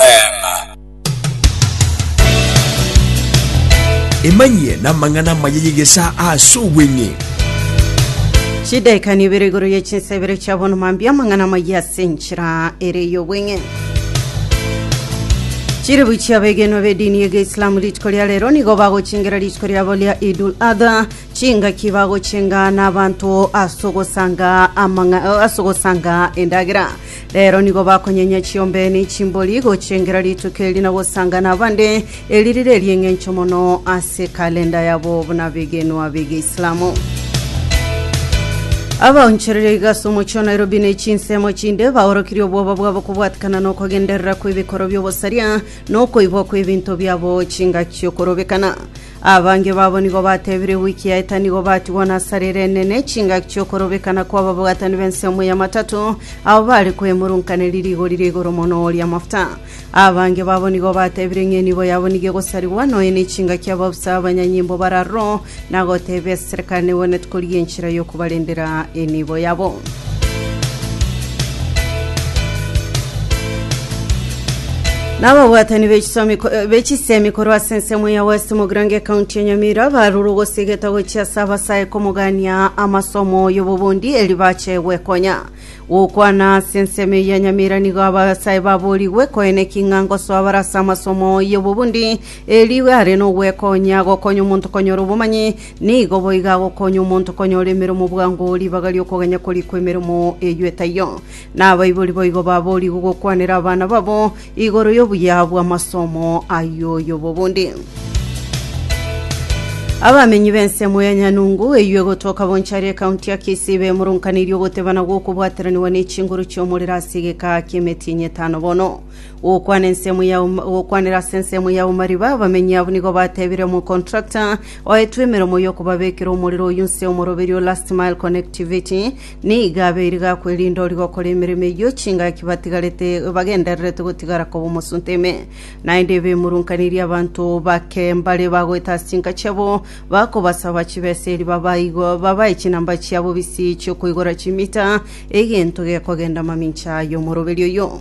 Amen. Emanyie namang'ana amaya y'egesaa ase obweng'e. Chidaika nibere igoro ye chinsa ibere chia bono mambia amang'ana amaya ase enchera ere y'obweng'e chiribu chia begenwa bedini ye geislamu rituko ria rero nigo bagochingera rituko riabo ria idul adha chingaki bagochinga n'abanto ase ogosanga amang'a- ase ogosanga endagera Rero nigo bakonyenya chiombe ne chimbori gochia engera rituko eri na gosanga nabande, eri rire eri'eng'encho mono ase ekalenda yabo buna bigenwa bi'Geislamu. Abaonchoreria iga ase omochie o Nairobi ne chinsemo chinde baorokirie obwoba bwabo kobwatikana nokogenderera kw'ebikorwa bi'obosaria na okoibwa kw'ebinto biabo chingaki okorobekana. Abange babo nigo batebire ewiki yaeta nigo batigwa na asara ere enene, chingaki chi'okorobekana kw'ababwatanwi b'ensemo y'amatato, abo bare kwemurunkaneria rigori ria igoro mono ri'amafuta. Abange babo nigo batebire ng'a enibo yabo nigo egosarigwa, nonya n'echingaki ababusa abanyanyimbo bararoro, na gotebia eserekano negwenerete korigia enchera y'okobarendera enibo yabo. Nababwatani be chisomi ko- eh, be chisemi korwa ase ensemo ya West Mogrange ekaunti ya Nyamira barurwa gosigeta gochia ase abasae komogania amasomo y'obobundi eri bache gwekonya gokwana ase ensemo eye ya Nyamira nigo abasae baborigwe koeneki ng'a ngosoa bare ase amasomo y'obobundi eri are nogwekonya gokonya omonto konyora obomanyi Nigo boigo agokonya omonto konyora emeremo bwango ribaga ri'okogenya korikwa emeremo eyio etaiyo. Na abaibori boigo baboorigwe gokwanera abana babo igoro y'obuya bw'amasomo ay'oyobo bonde. Abamenyi b'ensemo ya Nyanungu eyio egotoka Bonchari ekaunti ya Kisii bemoronkanirie ogotebana gw'okobwateraniwa ne chinguru chi'omorero ase egeka ki'emetienyi etano bono. Gokwana ensemo ya um- gokwanera ase ensemo ya omariba abamenyi abwo nigo batebire omocontractor oetwe emeremo y'okobabekera omorero oyio nse omoroberio last mile connectivity nigo abeire gakwerinda ori gokora emeremo eyio chingaki batigarete bagendererete gotigara koba omosunte ime naende ebemurunkaniri abanto bake mbare bagoeta ase chinka chiabo bakobasaba chibesa eri babaigo babae chinamba chiabo bisi chiokoigora chimita egento gekogenda mamincha y'omoroberio oyio